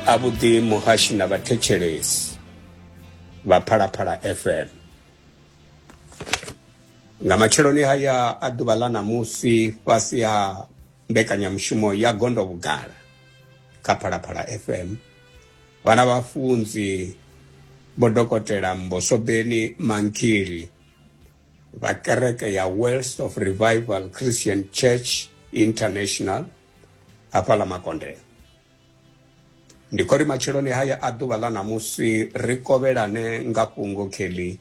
a vhuḓi muhashi na vhathetshelesi vha phalaphala fm nga matsheloni haya a ḓuvha ḽa ṋamusi fhasi ha mbekanyamushumo ya gondo vhugala kha phalaphala fm vhana vhafunzi vho dokotela mbosobeni mankili vha kereke ya wells of revival christian church international hafha ḽa makondela ndi khori matsheloni haya a ḓuvha ḽa ṋamusi ri kovhelane nga fhungo kelly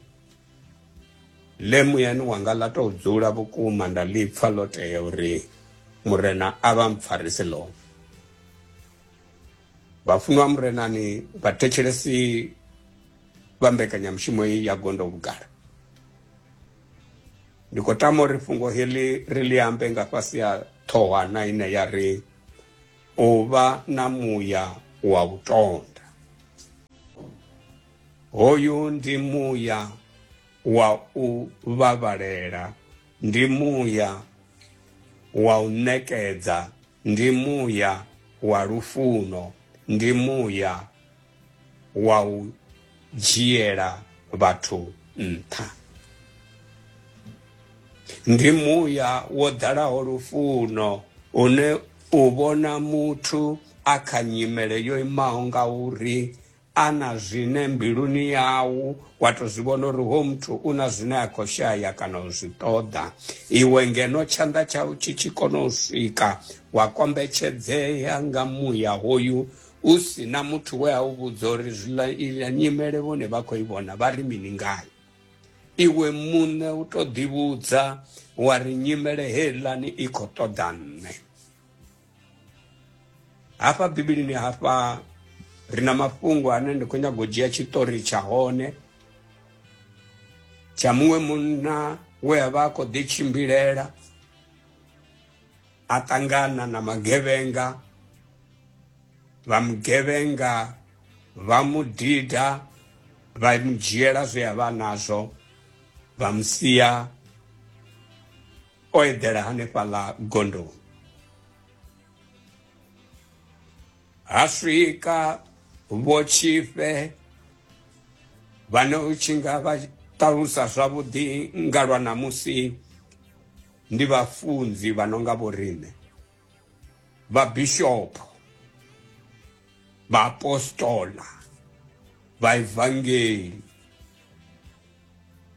ḽe muyani wanga ḽa tou dzula vhukuma nda ḽi pfa ḽo tea uri murena a vha mpfarisi ḽone vhafunwa murenani vhathetshelesi vha mbekanyamushumo ya gondo vhugala Ndi khou tama uri fhungo heḽi ri ḽi ambe nga fhasi ha ṱhohwana ine ya ri u vha na muya wa u tonda. Hoyu ndi muya wa u vhavhalela, ndi muya wa u ṋekedza ndi muya wa lufuno, ndi muya wa u dzhiela vhathu nṱha. Ndi muya wo ḓalaho lufuno une u vhona muthu a kha nyimele yo imaho nga uri a na zwine mbiluni yau wa tou zwi vhona uri ho muthu u na zwine a khou shaya kana u zwi ṱoḓa iwe ngeno tshanḓa tshau tshi tshi kona u swika wa kombetshedzea nga muya hoyu u si na muthu we a u vhudza uri zwiḽa iḽa nyimele vhone vha khou i vhona vha ri mini ngayo iwe muṋe u tou ḓivhudza wa ri nyimele heiḽani i khou ṱoḓa nṋe hafha bivhilini hafha ri na mafhungo ane ndi khou nyago u dzhia tshiṱori tsha hone tsha muṅwe munna we a vha a khou ḓitshimbilela a ṱangana na magevhenga vha mugevhenga vha mu dida vha mu dzhiela zwe a vha nazwo vha mu sia o eḓela hanefhaḽa gondoni ha swika vho tshifhe vhane u tshi nga vha ṱalusa zwavhuḓi nga lwa ṋamusi ndi vhafunzi vha no nga vhoriṋe vhabishopo vhaapostola vhaevangeli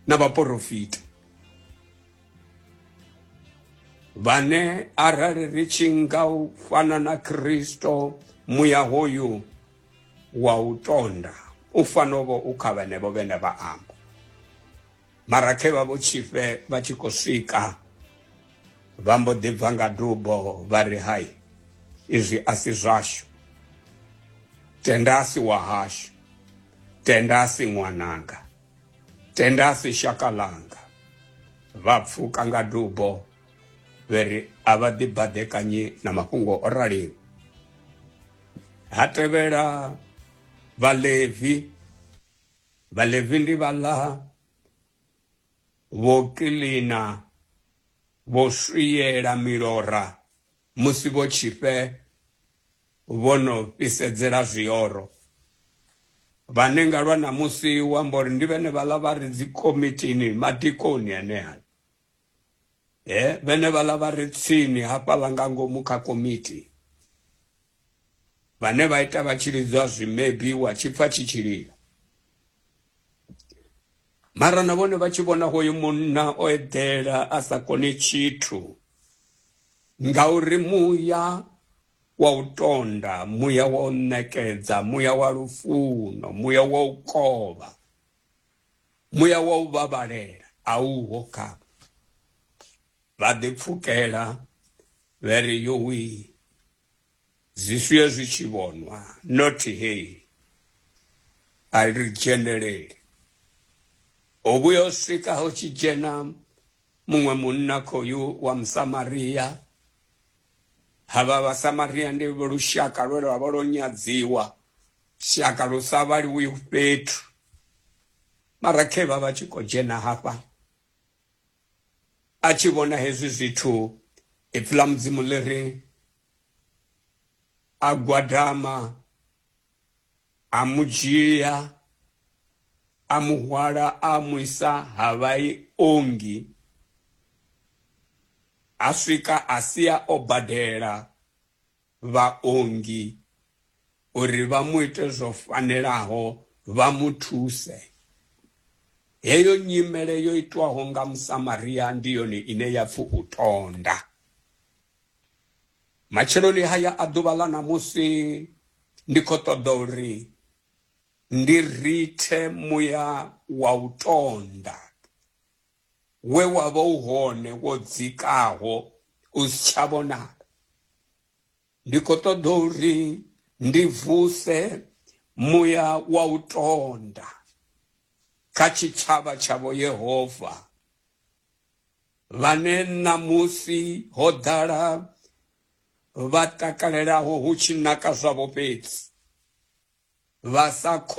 na vhaporofita vhane arali ri tshi nga u fana na kristo muya hoyu wa u tonda u fanovho u kha vhenevho vhene vha amba mara khe vha vho tshifhe vha tshi khou swika vha mbo ḓi bva nga dubo vha ri hai izwi a si zwashu tenda a si wa hashu tenda a si ṅwananga Tenda si shaka ḽanga. Vha pfuka nga dubo vhe ri a vha ḓibaḓekanyi na mafhungo o raliho. Ha tevhela Vhalevi. Vhalevi ndi vhaḽa vho kiḽina, vho swiela milora Musi vho tshifhe vho no fhisedzela zwioro, vhane nga lwa ṋamusi u amba uri ndi vhenevhaḽa vha re dzikomitini, madikoni enea, he vhenevhaḽa vha re tsini hafhaḽa nga ngomu kha komiti, vhane vha ita vha tshi lidzwa zwimebi wa tshi pfa tshi tshi lila mara na vhone vha tshi vhona hoyu munna o eḓela a sa koni tshithu ngauri muya wa u tonda muya wa u ṋekedza muya wa lufuno muya wa u kovha muya wa u vhavhalela a uho kha vha ḓipfukela vha ri yowi zwishuya zwi tshi vhonwa not hey a ri dzheneleli ho vhuya u swika ho tshi dzhena muṅwe munna khoyu wa musamaria havha vhasamaria ndi lushaka lwe lwa vha lwo nyadziwa shaka lu sa vhaliwi fhethu mara khe vha vha tshi khou dzhena hafha A tshi vhona hezwi zwithu, ipfi ḽa Mudzimu ḽi ri, A gwadama, a mu dzhia, a mu hwala a mu isa ha vhaongi, ha swika a sia o badela. vhaongi uri vha mu ite zwo fanelaho vha mu thuse. Heyo nyimele yo itwaho nga Musamaria ndi yone ine ya pfi u tonda. Matsheloni haya a ḓuvha ḽa ṋamusi ndi khou ṱoḓa uri ndi rithe muya wa u tonda we wa vha u hone wo dzikaho u si tsha vhonala ndi khou ṱoḓa uri ndi vuse muya wa u tonda kha tshitshavha tshavho yehova vhane ṋamusi ho ḓala vha takalelaho hu tshi naka zwavho fhedzi vha sa khou